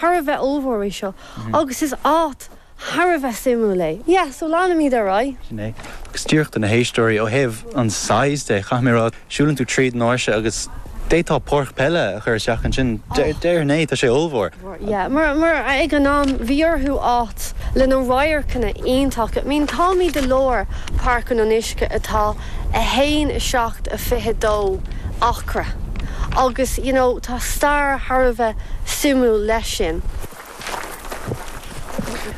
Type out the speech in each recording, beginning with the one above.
thar a bheith ollmhór é seo agus is áit thar a bheith suimiúil é. Yeah, so leanfaimid ar aghaidh. Sin é. Agus díreach do na héisteoirí, ó thaobh an size de, caithfidh mé a rá, siúlann tú tríd an áirse agus d'fhéadfá páirc peile a chur isteach ansin. Déarfainn é, tá sé ollmhór. Yeah, mar ag an am bhí orthu áit le na radharcanna iontacha. I mean, táimid i lár Páirc an Fhionnuisce atá. 1, 7, 22, acra, agus you know tá stair thar a bheith suimiúil leis sin.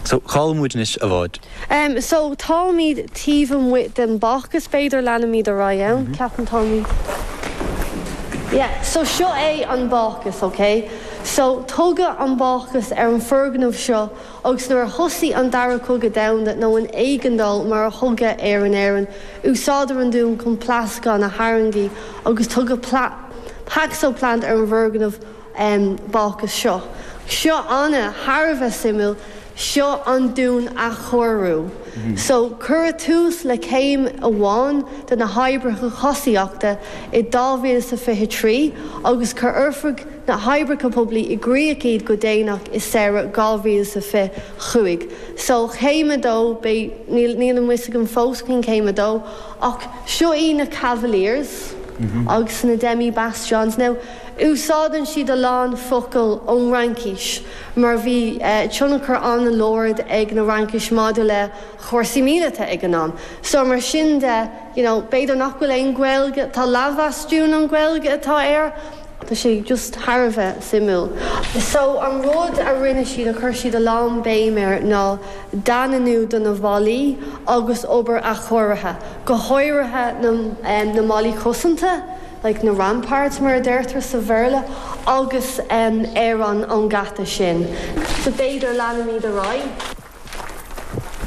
So cá'il muid anois a bhád? Em so táimíd taobh amuigh den bácús b'fhéidir leanfaimíd ar aghaidh ann, ceapaim táimíd yeah so seo é an bácús ok so tugadh an bácús ar an foirgneamh seo agus nuair a thosaigh an Dara Cogadh Domhanda, nó an Éigeandáil mar a thugadh air in Éirinn, úsáideadh an dún chun pléascáin a tháirgeadh agus tugadh Paxo Plant ar an bhfoirgneamh bácúis seo. Seo ana thar a bheith suimiúil, seo an dún athchóiriú. So, cuireadh tús le céim amháin de na hoibreacha thosaíochta i dá mhíle is a fiche trí agus chuir Oifig, na hOibreacha Poiblí i gcríoch iad go déanach i samhradh 2025. So céim a dó, beidh, níl, níl a fhios agam fós cén céim a dó, ach seo iad na Cavaliers agus na Demi Bastions. Now, úsáideann siad a lán focail ón Fhraincis mar bhí tionchar an-láidir ag an Fhraincis maidir le chúrsaí míleata ag an am. So mar sin de, you know, b'fhéidir nach bhfuil aon Ghaeilge, tá leathbhastún an Ghaeilge atá air, Tá sé just thar a bheith suimiúil. So an rud a rinne siad a chuir siad a lán béim air ná daingniú do na bhallaí agus obair athchóirithe, go háirithe na mballaí cosanta, like na ramparts mar a deirtear sa Bhéarla, agus ar an an geata sin. So b'fhéidir leanfaimid ar aghaidh.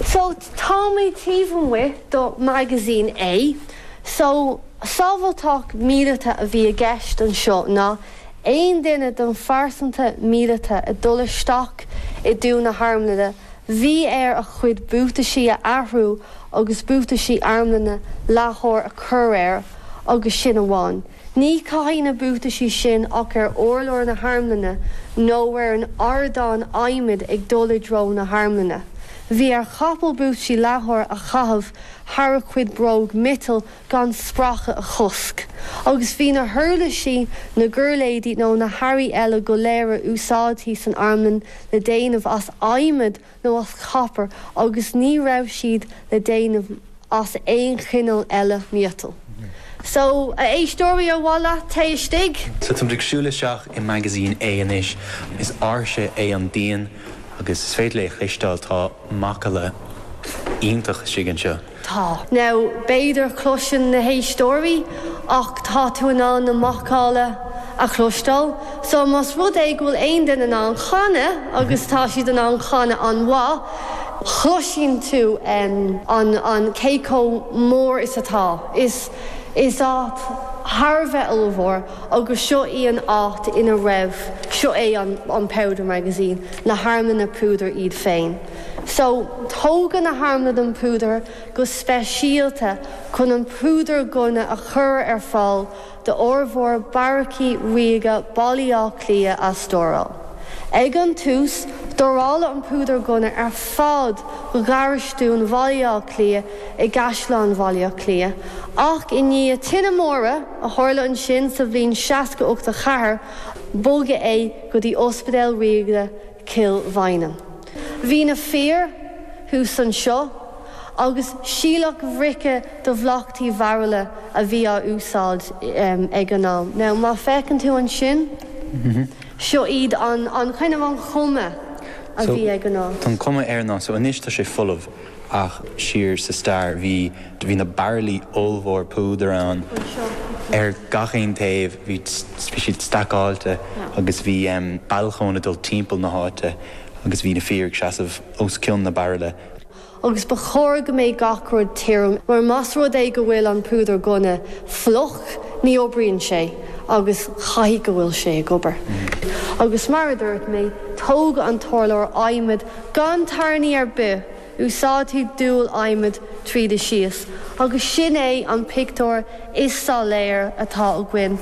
So táimid taobh amuigh do Magazine A. So sábhailteacht míleata a bhí i gceist anseo ná aon duine den phearsanra míleata ag dul isteach i dtreo na harmlainne bhí air a chuid buataisí a athrú agus buataisí armlainne leathair a chur air agus sin amháin. Ní chaithfí na buataisí sin ach ar urlár na harmlainne nó ar an ardán adhmaid ag dul i dtreo na harmlainne. Bhí ar chapall buataisí leathair a chaitheamh thar a chuid bróg miotail chun spréacha a chosc, agus bhí na huirlisí, na giuirléidí nó na hearraí eile go léir a úsáidtí san armlann le déanamh as adhmad nó as copar agus ní raibh siad le déanamh as aon chineál eile miotail. So, a éisteoirí, an bhfuil sibh istigh? So táimid ag siúl isteach i Magazine A anois. Is áirse é an díon agus is féidir libh cloisteáil, tá macalla iontach istigh anseo. Tá. Now, b'fhéidir a chloiseann na héisteoirí ach tá tú in ann na macalla a chloisteáil. So, más rud é go bhfuil aon duine in ann chanadh agus tá siad in ann chanadh an-mhaith, chloiseann tú an, an, cé chomh mór is atá. Is, is áit thar a bheith ollmhór agus seo í an áit ina raibh, seo é an, an Powder Magazine, na harmlanna púdair iad féin. So, tógadh na harmlanna don phúdar go speisialta chun an púdar gunna a chur ar fáil do fhormhór beairicí ríoga Bhaile Átha Cliath a stóráil. Ag an tús, stóráladh an púdar gunna ar fad do gharastún Bhaile Átha Cliath i gCaisleán Bhaile Átha Cliath, ach i ndiaidh tine móire a tharla ansin sa bhliain sé déag ochtó a ceathair, bogadh é go dtí Ospidéal Ríoga Chill Mhaighneann. Bhí na fir thuas anseo agus síleadh bhrice do bhoghtaí bairille a bhí á úsáid ag an am. Now má fhéachann tú ansin, seo iad an, an, kind of an chuma a bhí ag an am. Tá an cuma air ná, so anois tá sé folamh. ach siar sa stair bhí bhí na baraillí ollmhóra púdair ann ar gach aon taobh bhí bhí siad stacáilte agus bhí em balcony ag dul timpeall na háite agus bhí na fir ag seasamh os cionn na mbairillí agus ba chóir go mbeadh gach rud tirim mar más rud é go bhfuil an púdar gunna fliuch ní oibríonn sé agus caithfidh go bhfuil sé ag obair agus mar a dúirt mé tógadh an t-urlár adhmaid Gan tairní ar bith, úsáidtí duail adhmaid tríd is síos agus sin é an pictiúr is soiléire atá againn.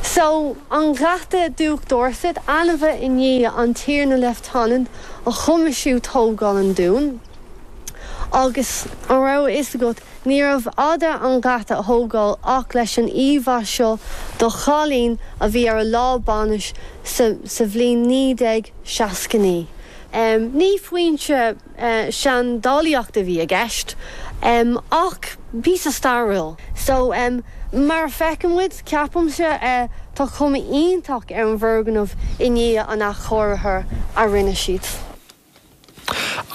So, an geata Diúc Dorset, ainmnithe i ndiaidh an Tiarna Leifteanant a choimisiúnaigh tógáil an dúin, agus an raibh a fhios agat, Níorbh fhéidir an geata a atógáil ach leis an íomhá seo de chailín a bhí ar a lá bainise sa bhliain 1969. Ní foinse seandálaíochta a bhí i gceist ach píosa stairiúil. So, mar a fheiceann muid, ceapaimse, tá cuma iontach ar an bhfoirgneamh i ndiaidh an athchóirithe a rinne siad.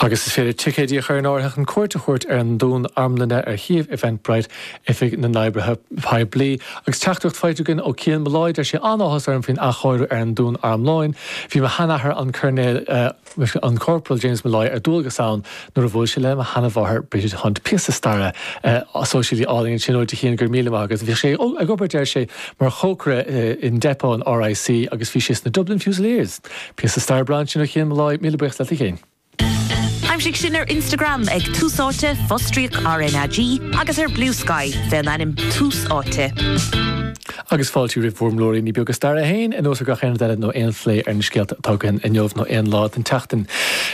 Agus is féidir ticéidí a chur in áirithe chun cuairt a thabhairt ar an Dún Armlainne ar shuíomh Eventbrite Oifig na nOibreacha Poiblí. Agus teachtaireacht faighte againn ó Cian Molloy, deir sé, An-áthas orm faoin athchóiriú ar an Dún Armlainne. Bhí mo sheanathair an Ceannaire, nó an Corporal James Molloy ar dualgas ann nuair a bhuail sé le mo sheanamháthair Brigid Hunt. Píosa staire sóisialta álainn ansin uait a Chian, go raibh míle maith agat. Bhíodh sé ag obair, deir sé, mar chócaire in Depot an RIC agus bhí sé sna Dublin Fusiliers. Píosa staire breá ansin ó Chian Molloy, míle buíochas leat a Chian. Aimsigh sinn ar Instagram ag Tús Áite, fostríoc RnaG, agus ar Bluesky faoin ainm Tús Áite. Agus fáilte roimh bhur mblúiríní beaga staire féin, anuas ar gach aon rud eile nó aon phlé ar na scéalta atá againn inniu nó aon lá den tseachtain.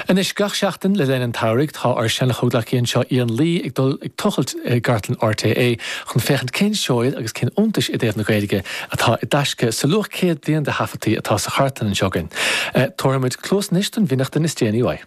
Anois, gach seachtain le linn an tsamhraidh, tá ár seanchomhghleacaí anseo Ian Lee ag dul ag tochailt i gcartlann RTÉ chun féachaint cén seoid agus cén iontais i dtaobh na Gaeilge atá i dtaisce sa luach céad bliain de atá sa chartlann anseo againn. Tabharfaimid cluas anois don bhfionnachtain is déanaí uaidh.